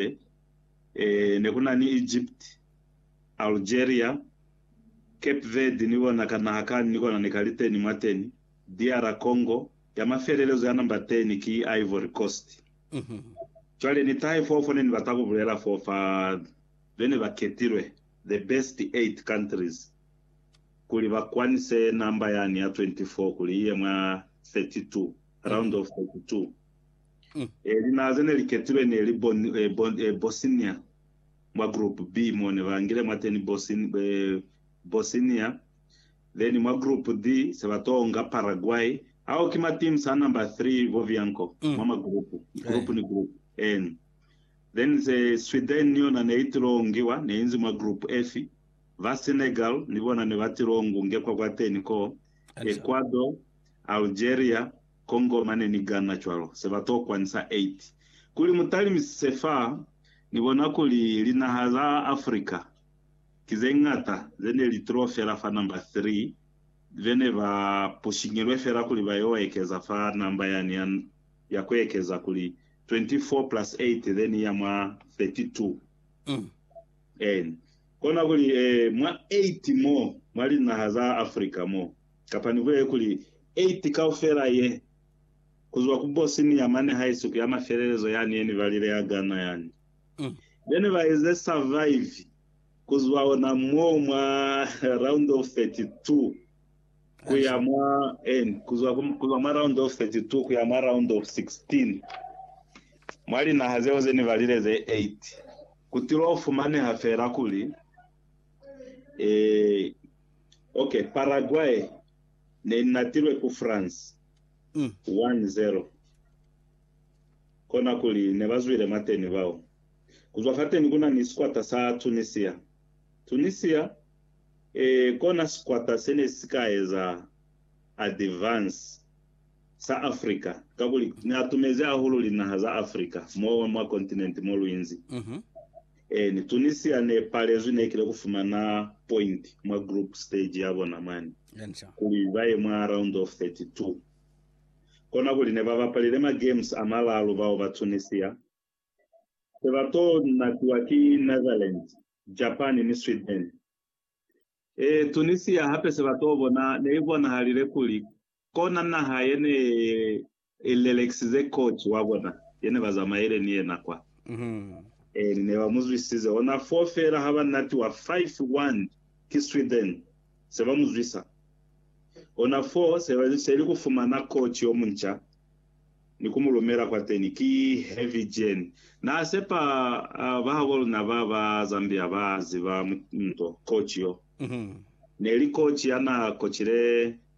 Hape, ne ku na ni Egypt, Algeria, Cape Verde ni kona ka naha kani ni kona ne ka li teni mwa teni, DR Congo, ya mafelelezo ya namba teni ki Ivory Coast. Cwale ni tahe foo fo ne ni bata ku bulela foo fa be ne ba ketilwe, the best eight countries, kuli ba kwanise namba yani ya 24 kuli i ye mwa 32, round of 32. E, linaha ze ne li ketilwe ne li Bon, eh, Bon, eh, Bosnia, mwa Group B, mo ne ba ngile mwateni Bosin, eh, Bosnia, then mwa Group D se ba to nga Paraguay. Ao ki ma teams a number 3 bo vianko mwa ma group, group ni group. En. Then se Sweden ni yona ne i tilo ngiwa, ne inzi mwa Group F. Ba Senegal ni bona ne ba tilo ngu ngekwa kwateni koo, Ecuador, Algeria, Congo mane ni Ghana cwalo, se ba tokwa ni sa 8. Kuli mu talimisise fa, ni bona kuli linaha za Africa ki ze ñata ze ne li tulo fela fa namba 3 be ne ba pushiñilwe fela kuli ba yo ekeza fa namba yani ya, ya ku ekeza kuli 24 plus 8 ze ni ya mwa 32. Ee, kona kuli, ee, mwa 8 mo, mwa linaha za Africa mo. kapa nihulele kuli Eighth kaufela ye, kuzwa ku Bosnia mane haisi ku ya mafelelezo yani yeni valile ya Ghana yani. Bene ba ize survive kuzwa ona moo mwa round of 32 kuya mwa en, kuzwa kuzwa mwa round of 32 kuya mwa round of 16 mwa linaha zeo zeni valile ze eight. Kutilo fumaneha fela kuli eh Ok, Paraguay ne inatilwe ku France 1-0. Kona kuli ne ba zwile mwateni bao. Ku zwa fateni ku na ni sikwata sa Tunisia. Tunisia e kona sikwata se ne si ka eza advance sa Africa kakuli ne atumezi ahulu linaha za Africa mo mwa continent mo lu inzi. Ee, ni Tunisia ne palezwi nekile ku fumana point mwa group stage ya bona mwani, kuli ba ye mwa round of 32. Kona kuli ne ba bapalile ma games a malalu bao ba Tunisia. Se ba to natiwa ki Netherlands, Japan ni Sweden. Ee, Tunisia hape se ba to bona ne i bonahalile kuli Kona naha yene i lelekisize kocu wa bona yene ba zamaile ni yena kwa. Eli ne ba mu zwisize ona foo feela ha ba natiwa 5 wand ki Sweden, se ba mu zwisa ona foo. Se ba seli ku fumana kocu yo munca ni ku mu lumela kwateni ki Heavy Jane. Na sepa ba habo luna ba ba Zambia ba ziba nto kocu yo. Neli kocu ya na kocile.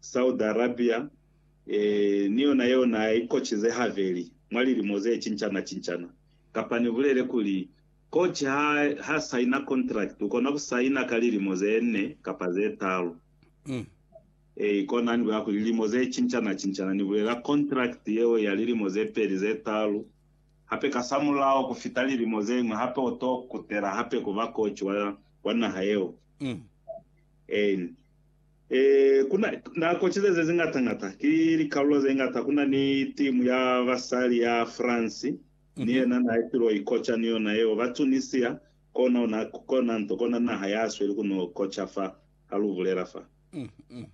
Saudi Arabia, eeh, ni yona yeo na i kocize habeli mwa lilimo ze cincana-cincana. Kapa ni bulele kuli, koci ha, ha saina kontrakiti, ukona ku saina ka lilimo ze ne kapa ze talu. Eeh, kona ni bulela kuli, lilimo ze cincana-cincana, ni bulela kontrakiti yeo ya lilimo ze peli, ze talu, hape kasamulaho ku fita lilimo ze ñwi, hape u to kutela hape ku ba koci wa, wa naha yeo. Eeh, Eh, kuna nako cize ze zingata ngata, ki likalulo ze ngata. Kuna ni timu ya basali ya France, ni mhm. yena na itilo ikoca ni yona yeo. Ba Tunisia, kona ona, kona nto, kona naha ya sweli kuno koca fa, ha lu bulela fa. Mm, mm.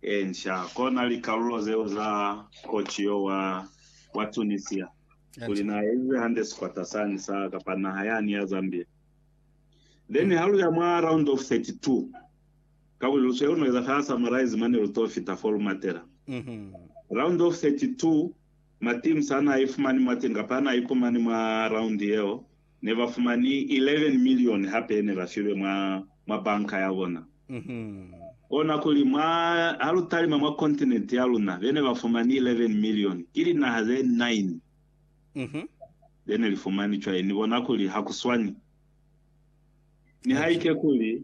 Ensha, kona likalulo zeo za koci yo wa, wa Tunisia. Kuli na ezize hande sikwata sani sa, kapa naha yani ya Zambia. Then ha lu ya mwa round of 32, kakuli lu sweli no eza ka summarize mane lu to fita fo lu matela. Round of 32, ma teams a na ifumani mwateñi kapa a na ipumani mwa round yeo, ne ba fumani 11 million hape ye ne ba filwe mwa, mwa banka ya bona. Kona kuli mwa, ha lu talima mwa continent ya luna, be ne ba fumani 11 million, ki linaha ze nine. Ze ne li fumani cwañi? Ni bona kuli ha ku swani. Nihaike kuli